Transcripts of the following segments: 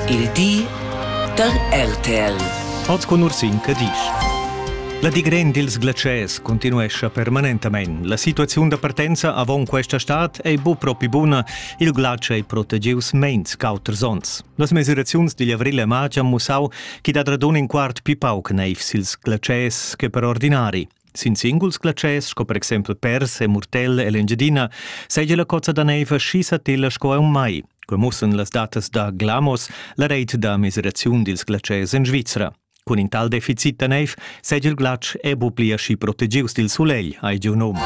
Il di da RTL. Oz cun Ursin Cadisch. La digren dils glatschers continuescha permanentamein. La situaziun da partenza avon questa stad ei bu propi buna. Il glatsch ei protegius meins qu'auters onns. Las mesiraziuns digl avril e marz han mussau ch'i dat radun in quart pi pauc neiv sils glatschers che per ordinari. Sin singuls glatschers, sco per exempel pers e murtella ell'Engiadina, seigi la cozza da neiva schi satilla sco aunc mai. Quei mussen las datas da Glamos, la reit da miseraziun dils glatschers en Svizra. Cun in tal deficit da neiv seigi il glatsch e bu pli aschi protegius dil sulegl, hai giu num.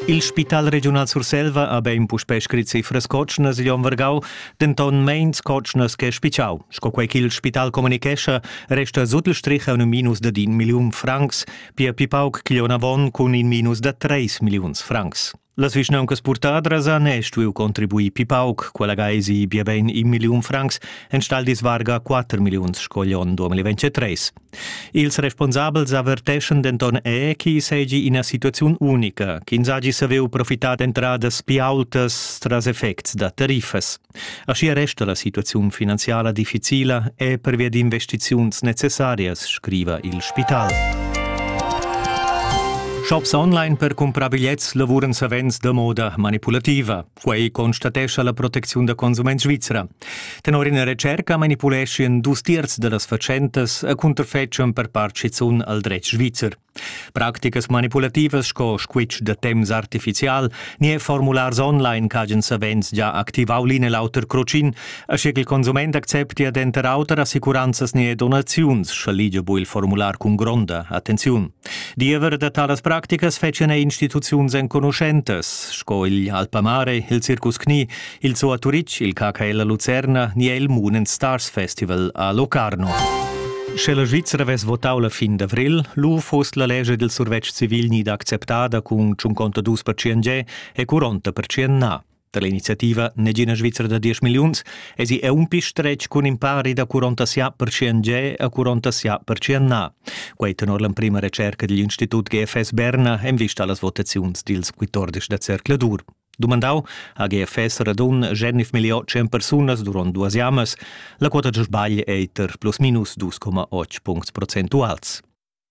Il Spital regiunal Surselva ha bein puspei scrit cifras cotschnas igl onn vargau, denton meins cotschnas che spitschau. Sco quei ch'il spital communichescha, resta sut il strich un minus da din milliun francs, pia pli pauc avon cun in minus da treis milliuns francs. Las vischnauncas purtadras han e stuiu contribuir pi pauc, quella gaesi bia bein in milliun francs, enstagl disvarga 4 milliuns sco gli 2023. Ils responsabels averteschan denton è che seigi ina situaziun unica, ch'ins hagi saviu profitar d'entradas pli aultas tras effects da tariffas. Aschia resta la situaziun finanziala difficila e pervia d'investiziuns necessarias, scriva il spital. Shops online per cumprar bigliets lavuran savens da moda manipulativa. Quei constatescha la protecziun da consument svizra. Tenor ina retscherca manipuleschian dus tiers dallas fatschentas a cunterfetschan per part schizun al dretg svizzer. Practicas manipulativas sco squitsch da temps artificial ni e formulars online ch'hagen savens già activau l'in e l'auter crocin, aschi ch'il consument acceptia denter auter assicuranzas ni donaziuns, scha ligia bu il formular cun gronda attenziun. Diever da talas practicas fetschan er instituziuns enconuschentas, sco il Alpamare, il Circus Knie, il zoo a Turitg, il KKL a Lucerna ni il Moon Stars Festival a Locarno. Sche la Svizzera vess votau la fin d'avril, lu fost la lescha dil survetsch civil ni d'acceptada cun 52% e 40% na. Da l'iniziativa Negina Svizra da 10 milliuns esi è un pi stretg cun in pari da 47% ge a 47% na. Quai tenor l'emprima recerca digl Institut GFS Berna en vista a las votaziuns dils 14 da Cercle dur. Dumandau ha GFS radun genif miliò 100 persunas durant duas jamas. La quota da sbagl è eiter plus minus 2,8 puncts procentuals.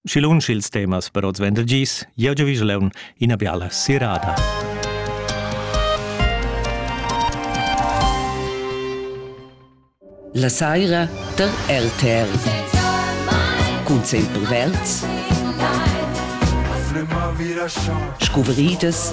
Schi lunsch ils temas per oz vender gis, jeu giu vislaun ina biala sirada. La saira der RTR. Cun sempre verds. Scuvridas